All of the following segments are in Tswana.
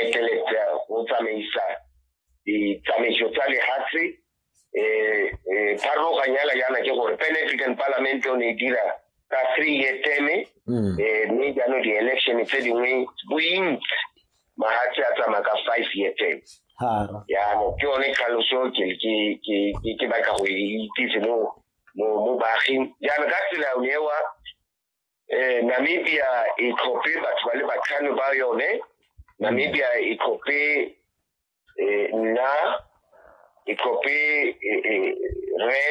eteletsa go tsamaisa ditsamaiso tsa lehatshe um eh, eh, pharologanyala yana ke gore pan african parliament o ne e dira ka three year teme mm. eh, mme jaanong di-election tse dingwe bointsi mahatshe a tsamaya ka five year teme jaanong ke yone tlhaloso ke batla go e itse mo baaging jaanong ka tsela ewa eh, namibia e tlhophe batho ba le batlhano ba yone namibia e tlhophe eh, nna e tlhophe eh, eh, re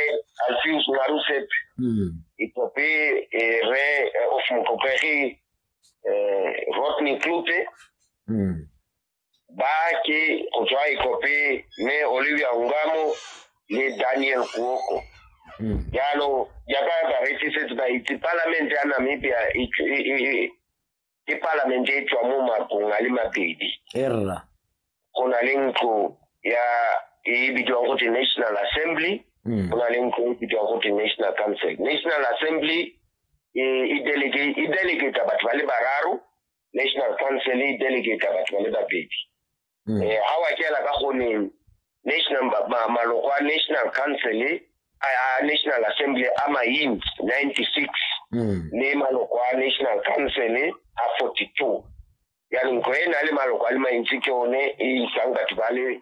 alfius narusep mm. e tlhophe eh, re eh, of motlhopegi eh, rodney klute mm. bake go tswa ikope mme olivia ungamo le daniel kuoko hmm. jalo jaaka baretsi setse ba itse palamente ya namibia e, e, e, ke palamente e tswa mo makong a le mabedi go na le ntlo ya e bidiwang go te national assembly hmm. go na le ntlo e bidiwang go te national council national assembly e delegata batho ba le bararo national council e delegate batho ba le babedi um ga wa kela ka goneng national maloko a national council a national assembly a mains ninety six le maloko a national council a forty two jaanong ko e na le maloko a le mantsi ke one e isang batho ba le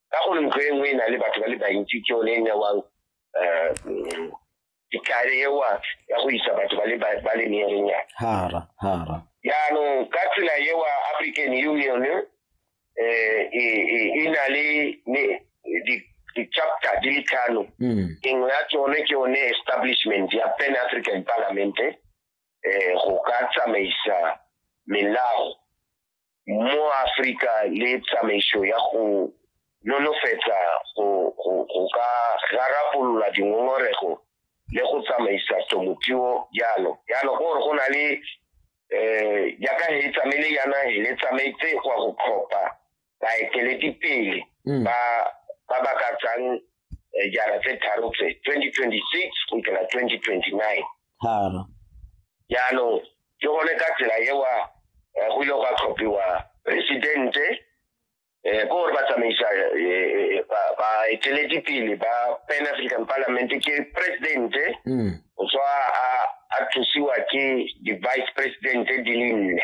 ka gore ntlo e nngwe e na le batho ba le bantsi ke yone e newang um ditlhare ewa ya go isa batho ba le ba- ba le meerenyana hara hara jaanong ka tsela ewa african union um e na le ne- di- di-chapter di le tlhano mm engwe ya tsone ke yone establishment ya pan african parliament eh go ka tsamaisa melao mo Afrika le tsamaiso ya go nolofetsa go ka rarabolola dingongorego le go tsamaisa temothuo jalo jalo ke gore go na le um jaaka he tsamaile yana le tsamaetse go go tlhopha baeteledipele mm. ba ba ka tsang eh, jara tse tharo tse 2026 go ikela 2029 tharo jaanong ke gone ka tsela ewa eh, go ile gwa tlhophiwa presidente um ko gore ba tsamaisa eh, baeteledipele ba pan african parliament ke presidente mm. o tswa a thusiwa ke di-vice presidente di le nne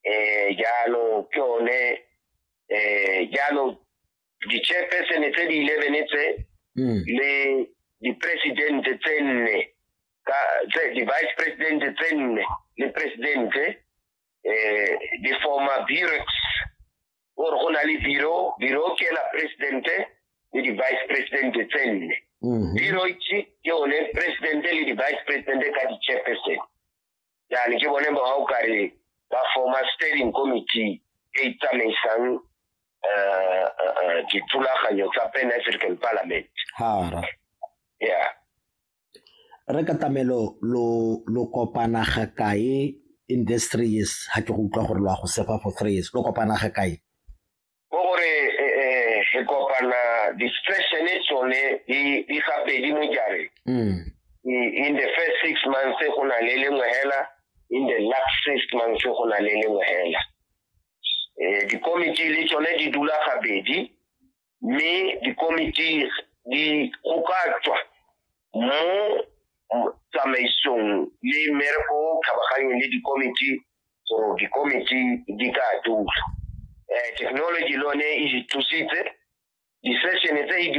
eh, jalo ke one eh, jalo di-chairpersone tse di eleven tse mm. le di-presidente tse nne di-vice presidente tse nne le presidente eh, di forma burex ore go na le biro biro ke la presidente le di-vice presidente tse nne mm-hmm. biro ke one presidente le di-vice presidente ka di-chairpersone yani ke bone ba o kare ba forma steering committee e e tsamaisang eh, eh, eh, dithulaganyo tsa pan african parliament hara ya re ka tamelo lo lo kopana ga kae in this three years ha ke go utlwa gore lo a go sefa for three years lo kopana ga kae ke gore eh, eh, kopana distraction e tsone di gabedi mo jareng mm. in the first six months go na le lengwe hela in the last six months go na le lengwe hela um dikomiti le tsone di dula gabedi mme dikomiti di go ka tswa mo tsamaisong le mmereko o kgabaganyeng le dikomiti so dikomiti di ka dula um technology le one e thusitse di-session tse e di